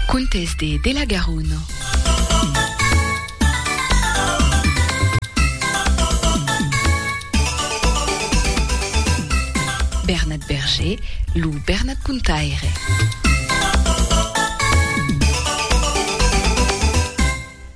Contes de de la Garona. Bernat Berger, lo Bernat Contaire.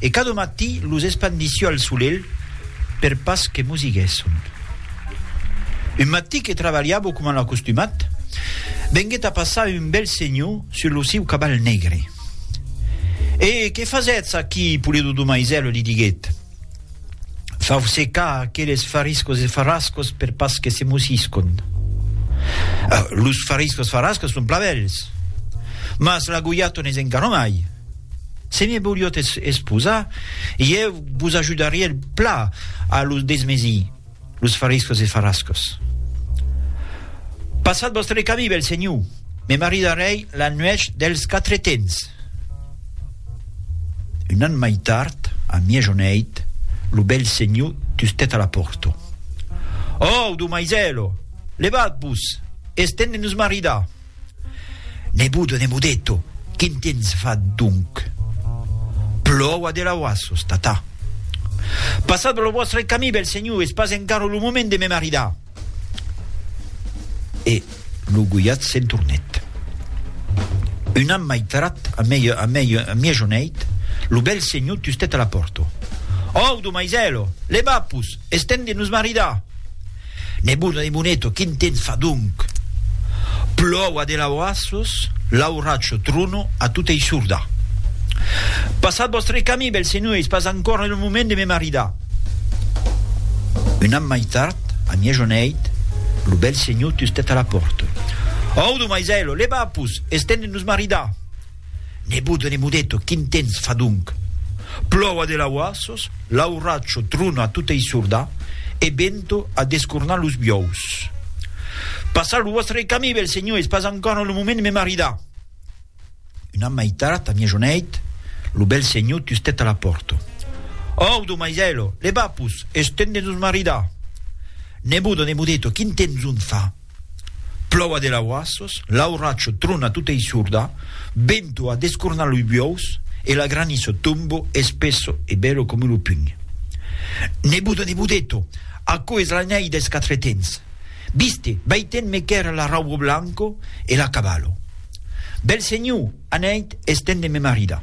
E cada matí los espandissi al solelh per pas que mosiguèsson. Un matí que trabalhavo coma l'acostumat, venguèt a passar un bèl senhor sus lo siu caval negre. E que fasètz aquí, Pulido do Maisèl? li diguèt. Fau secar aqueles fariscos e farrascos per pas que se mosiscon. Los fariscos farrascos son plan bèls, mas la goiaton es encara mai. Se me voliot esposar, ieu vos ajudaria el pla a los desmesir, los fariscos e farascos. Passat vòstre camí, bèl senhor, me maridarèi la nuèch dels Quatretens. Un an mai tard, a miejoneit, lo bèl senhor tustèt a la pòrta. Òu, domaisèlo, levat-vos, es temps de nos maridar! Nebudo, Nebudeto, quin tens fat donc? Plòua de lauassos, tata. Passatz lo vòstre camí, bèl senhor, es pas encara lo moment de me maridar. E lo goiat se'n tornèt. Un an mai tard, a miejoneit, lo bèl senhor tustèt a la pòrta. Audo, maisèlo, levapos, es temps de nos maridar! Nebuna de Muneto, quin temps fa donc? Plòu a de laurassos, lauracho, trono, a tota issorda. Passat vòstre camí, bèl senhor, es pas ancòra lo moment de me maridar. Un an mai tard, a miejoneit, lo bèl senhor tustet a la pòrta. Audo, maisèlo, leva-pus, es temps de nos maridar! Nebot de Nemodeto, quin temps fa donc? Plòu a de lauassos, l'auracho trona a tota issorda, e vento a descornar los biòus. Passar lo vòstre camí, bèl senhor, es pas encòra lo moment de me maridar. Un an mai tard, a mièjoneit, lo bèl senhor tustèt a la pòrta. Òu, domaisèlo, levapos, es temps de nos maridar! Nebot de Nemodeto, quin temps donc fa? Plòu a de lauassos, l'auracho trona tota issurda, bento a descornar loi buòus e la graniço tombo espesso e bèlo come lo pugn. Nebudo, nebudeto, aquò es la nèi des quatre tens. Viste, vai ten me quèr la raubo blanco e la cavallo. Bèl senhor, anèit es ten de me marida.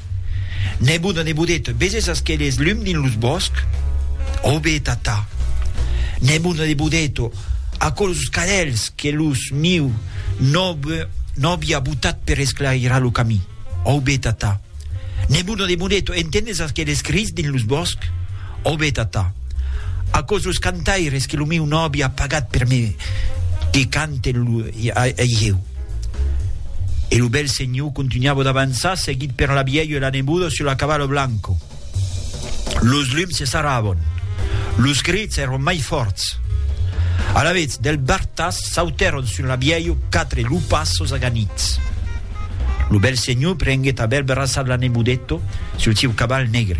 Nebot a nebodet, veses aqueles lum dins los bòsc? Aube, tata. Nebot a nebodet, aquelos cadelhs que los miu nòve nòvi a botat per esclairar lo camí? Aube, tata. Nebot a nebodet, entendes aqueles crits dins los bòsc? Òbe, tata, aquò's los cantaires que lo meu nòvi a pagat per me que canten lo hieu. E lo bèl senhor contunhava d'avançar, seguit per la vièlha e la neboda sul la cavala blanca. Los lums se sarravon. Los crits èron mai fòrts. Alavetz, del bartas sautèron sul la vièlha quatre lupassos aganits. Lo bèl senhor prenguèt a bèl braçar l'Anebudetto sul sieu caval negre.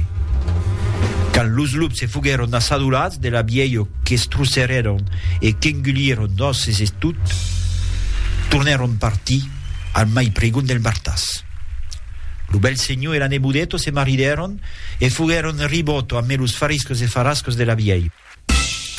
Quand los lups se foguèron assadolats de l'abielho qu'estrusserèron e qu'engulieron d'òsses e tot, tornèron partir al mai pregon del martàs. Lo bèl senhor e l'Anebudetto se maridèron e foguèron ribòto amé los fariscos e farascos de l'abielho.